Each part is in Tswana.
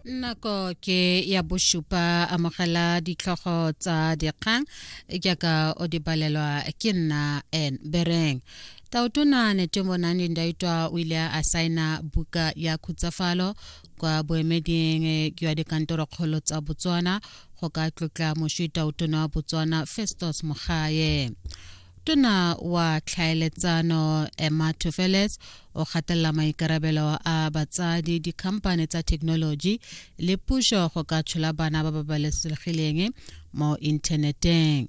nako ke ya bosupa amogela ditlhogo tsa dikgang jaaka o di balelwa ke nna en bereng taotona netemonane ndaitwa o ile a saena buka ya khutsafalo kwa boemeding jwa eh, dikantorokgolo tsa botswana go ka tlotla moswi taotona wa botswana festus mogaye tona wa tlhaeletsano emma tofeles o gatelela maikarabelo a batsadi dikhamphane tsa thekenoloji le puso go ka tshola bana ba ba balesegileng mo inthaneteng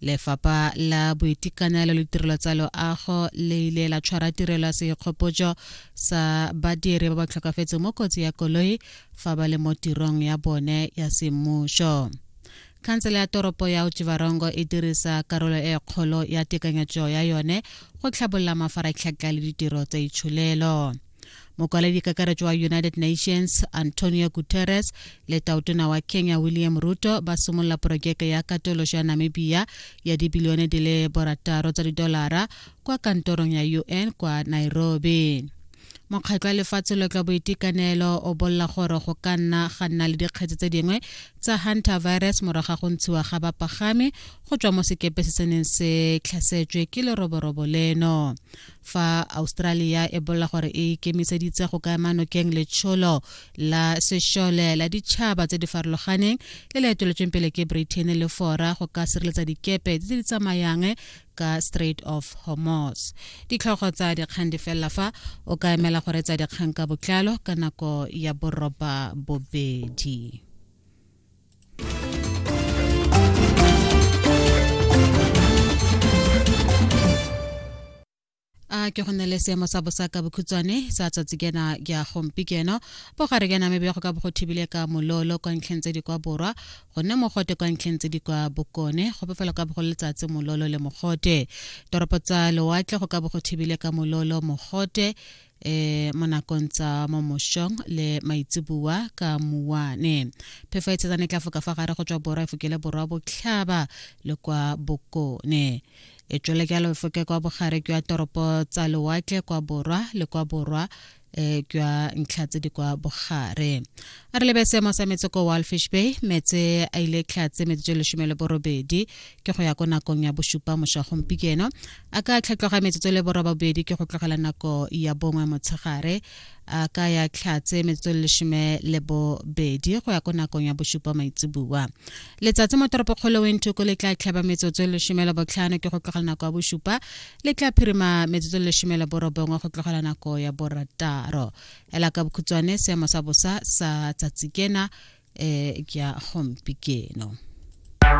lefapha la boitekanelo le tirelo tsa loago le ile la tshwara tirelo ya seikgopotso sa badiri ba ba tlhokafetseng mo kotsi ya koloi fa ba le mo tirong ya bone ya semmuso Khansele ya toropo ya Otjiwarongo e dirisa karolo e kgolo ya tekanyetso ya yone go tlhabolola mafaratlhatlha le ditiro tsa itsholelo. Mokwaledi kakaretso wa United Nations Antonio Guterres le tautona wa Kenya William Ruto ba simolola porojeke ya katoloso ya Namibia ya dibilione di le borataro tsa didolara kwa kantorong ya UN kwa Nairobi. Mokgatlho wa Lefatshe lo tla Boitekanelo o bolla gore go ka nna ga nna le dikgetse tse dingwe tsa Hunter virus morago ga go ntshiwa ga bapagami go tswa mo sekepe se se neng se tlhasetswe ke leroborobo leno. Fa Australia e bolla gore e ikemiseditse go ka ema nokeng letsholo la sešole la ditšhaba tse di farologaneng le le eteletsweng pele ke Britain le fora go ka sireletsa dikepe tse di tsamayang ka strait of hormos ditlhogo tsa dikgang di felela fa o ka emela go retsa dikgang ka botlalo ka nako ya boroba bobedi a ke go nne le seemo sa bosa ka bokhutshwane sa tsatsi kena ya gompi keno bogare kena mebe go ka bo go thibile ka mololo kwa ntlheng tse di kwa borwa go nne mogote kwa ntlheng tse di kwa bokone go bofela ka bogolo letsatsi mololo le mogote toropo tsa lewatle go ka bo go thibile ka mololo mogote eh mo nakong tsa mo moshong le maitseboa ka muane phefo e tshetsane tla foka fa gare go tswa borwa e fokele borwa botlhaba le kwa bokone e tswele ka lefoke kwa bogare kwa toropo tsa lewatle kwa borwa le kwa borwa eh kwa ntlha tse di kwa bogare a re lebe seemo sa metse ko walfish bay metse a ile tlhatse metse tse lesome le borobedi ke go ya ko nakong ya bosupa moša gompikeno a ka tlhatloga metsotso le borobabedi ke go tlogela nako ya bongwe motshegare a ka ya tlhatse metsotso leshome le bobedi go ya ko nakong ya bosupa maitseboa letsatsi mo toropokgolo wentoko le tla tlhaba metsotso leshome le botlhano ke go tlogela nako ya bosupa le tla phirima metsotso leshome le borobongwe go tlogela nako ya borataro ela ka bokhutshwane seemo sa bosa sa tsatsi kena um ke ya gompi keno